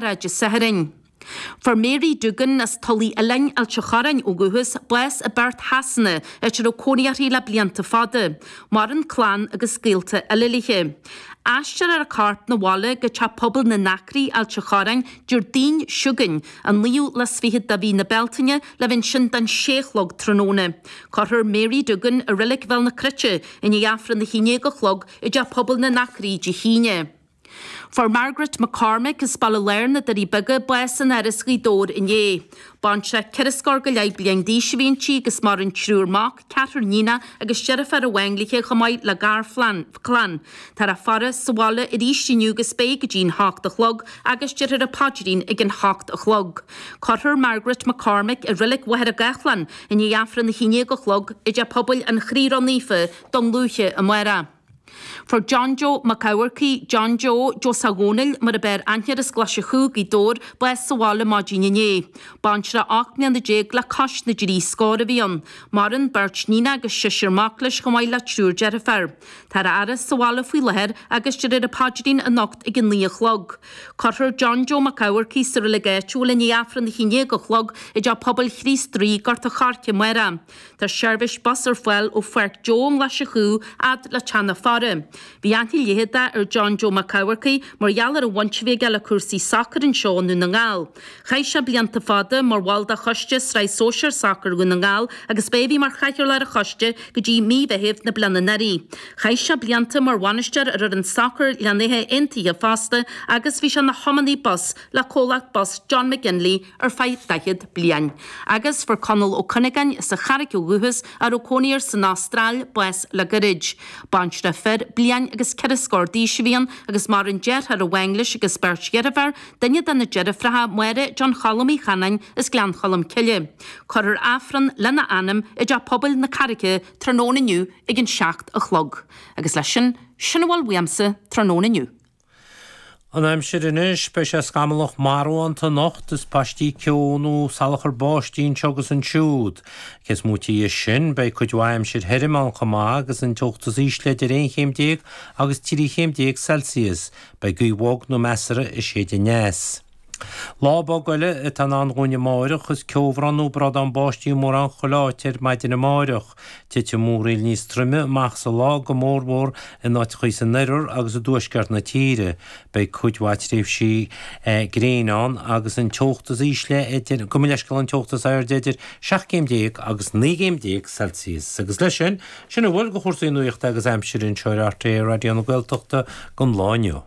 Dé Sathairn. Fuair Mary Doogan, as Tulaigh Oileáin Ailt a' Chorráin ó dhúchas, bás i bPerth Shasana, áit a raibh cónaí uirthi le blianta fada. Maireann clann agus gaolta eile léi. Aistreofar a corp 'na bhaile go teach pobail na nAcraí, Ailt a' Chorráin, Diardaoin chugainn, an 29ú de mhí na Bealtaine, le bheith ansin don sé a chlog tráthnóna. Cuirfear Mary Doogan i Reilig Bhéal na Cruite i ndiaidh Aifreann a haon déag a chlog i dteach pobail na nAcraí Dé hAoine. Fuair Margaret McCormick as Baile Láir na Doirí Beaga bás in Áras Ghaoth Dobhair inné. Baintreach ceithre scór go leith bliain d'aois a bhí inti agus maireann triúr mac, ceathrar níon agus deirfiúr amháin léithe chomh maith le garchlann. Táthar á faire sa bhaile arís inniu agus beidh go dtí'n hocht a chlog agus déarfar an paidrín ag an hocht a chlog. Cuirfear Margaret McCormick i Reilig Mhachaire Gathlán i ndiaidh Aifreann a haon déag a chlog i dTeach Pobail an Chroí Ró-Naofa, Dún Lúiche, amárach. Fuair John Joe Mac Eachmharcaigh, John Joe, Joe Sagh Dhomhnaill mar ab fhearr aithne air, as Glaise Chú, Gaoth Dobhair, bás sa bhaile maidin inné. Baintreach 18 mbliana le cois na dtrí scór a bhí ann. Maireann beirt níon agus seisear mac leis chomh maith le triúr deirféar. Táthar á fhaire sa bhaile faoi láthair agus déarfar an paidrín anocht ag a naoi a chlog. Cuirfear John Joe Mac Eachmharcaigh sa reilig áitiúil i ndiaidh Aifreann a hAon Déag a chlog i dTeach Pobail Chríost Rí, Gort an Choirce, amárach. Tá seirbhís bus ar fáil ó Pháirc Joe i nGlaise Chú fhad le Teach na Faire. Bhí aithne leitheadach ar John Joe Mac Eachmharcaigh mar gheall ar an bhaint a bhí aige le cúrsaí sacair anseo i nDún na nGall. Chaith sé blianta fada mar bhall de choiste Sraith Sóisear Sacair Dhún na nGall agus ba é a bhí mar chathaoirleach ar an choiste go dtí mí Mheithimh na bliana anuraidh. Chaith sé blianta mar bhainisteoir ar fhoireann sacair Ghleann Átha Aontaithe fosta agus bhí sé ina thiománaí bus le comhlacht bus John McGinley ar feadh daichead bliain, agus fuair Conall Ó Cuinneagáin as an Charraic ó dhúchas, a raibh cónaí air san Astráil, bás le gairid. Baintreach fir bliain agus ceithre scór d'aois a bhí ann, agus maireann deartháir amháin leis agus beirt dheirféar, duine de na deirfreacha, Máire John Choilm Uí Chanainn as Gleann Cholm Cille. Cuirfear Aifreann lena anam i dTeach Pobail na Carraice tráthnóna inniu ag an seacht a chlog. Agus leis sin, sin a bhfuil uaimse tráthnóna inniu. An aimsir anois, beidh sé scamallach marbhánta anocht is paistí ceo nó salachar báistí anseo agus ansiúd. Cé is móite dhe sin, beidh cuid mhaith aimsir thirim ann chomh maith agus an teocht is ísle idir aon chéim déag agus trí chéim déag Celsius. Beidh gaoth bhog nó measartha ag séideadh aneas. Lá bog eile atá i ndán dhúinn amáireach, is ceobhrán nó brádán báistí mórán chuile áit ar maidin amáireach. Titfidh múraíl níos troime amach sa lá, go mórmhór in áiteachaí san oirthear agus i dtuaisceart na tíre. Beidh cuid mhaith tréimhsí gréine ann agus an teocht is ísle idir, gabh mo leithscéal, an teocht is airde idir seacht gcéim déag agus naoi gcéim déag Celsius. Agus leis sin, sin a bhfuil de chúrsaí nuachta agus aimsire anseo ar RTÉ Raidió na Gaeltachta don lá inniu.